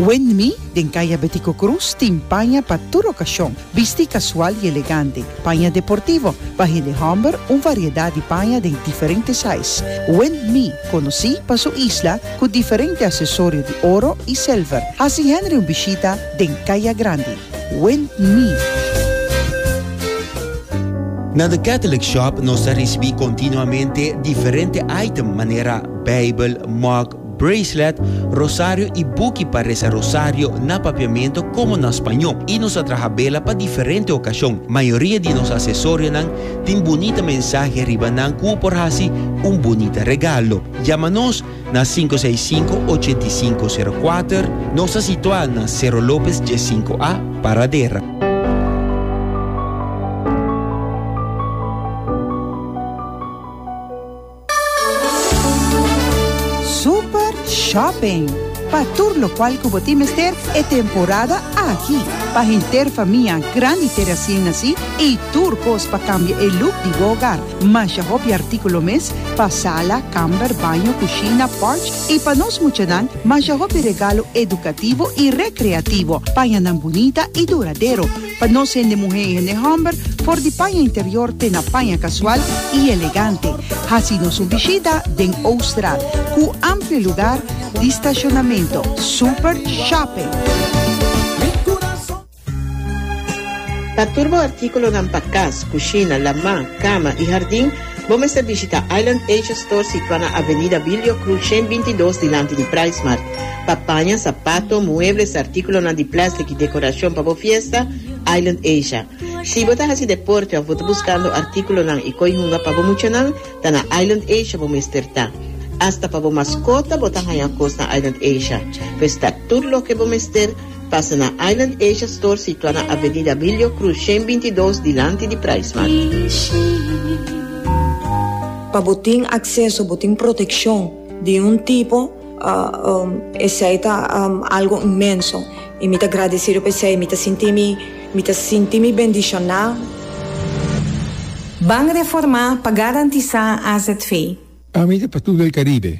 Wendmi, den Kaya Betico Cruz, tin paña pa tur okashon, bistí kasual i elegante, paña deportivo, bahén de hòmber, un variedat di paña den diferente sais. Wendmi, konosí pa su isla ku diferente asesorio di oro i sèlver, hasi Henry un bishita den Kaya Grandi. Wendmi. Na The Catholic Shop nos ta risibí kontinuamente diferente item manera Beibel, mug, bracelet, rosario y buki pa reza rosario na papiamento como na spaño y nos a traha bela pa diferente ocasion. Mayoria di nos acesorianan tin bunita mensahe riba nan cu u por haci un bunita regalo. Yama nos na sinku seis sinku ochenta i sinku sero kuater, nos ta situa na Cerro Lopez dies sinku A, Paradera. Super Shopping, Pa tur lokual ku bo tin mester e temporada aki. Pa henter famia grandi te resien nasí i tur kos pa kambia e luk di bo ogar. Masha hopi artíkulo mes pa sala, kamber, baño, kushina, pòrch i pa nos muchanan masha hopi regalo edukativo i rekreativo. Paña nan bunita i duradero. Pa nos hende muhé i hende hòmber, for di paña interior te na paña kasual i elegante. Hasi nos un bishita den Oostra ku amplio lugar di stashonamentu, super shopping. Pa tur bo artíkulonan pa kas, kushina, lamá, kama i hardin. Bo mester bishita Island Asia Store situá na Avenida Bilio Cruz shen binti dos dilanti di Pricemart. Pa paña, sapato, muebles, artíkulonan di plèstik i dekorashon pa bo fiesta, Island Asia. Si bo ta hasi deporte òf bo ta buskando artíkulonan i koi hunga pa bo muchanan, ta na Island Asia bo mester ta. Asta pa bo maskota bo ta haña kos na Island Asia. Pues ta tur loke bo mester. Pasa na Island Asia Store situa na Avenida Abilio Cruz shen binti dos dilanti di Price Mart. Pa bo tin acceso, bo tin proteccion di un tipo, esey ta algo inmenso y mi ta gradecido pa esey, mi ta sinti mi, mi ta sinti mi bendiciona. Ban Reforma pa garantisa azv. Ami ta pa tur del Caribe.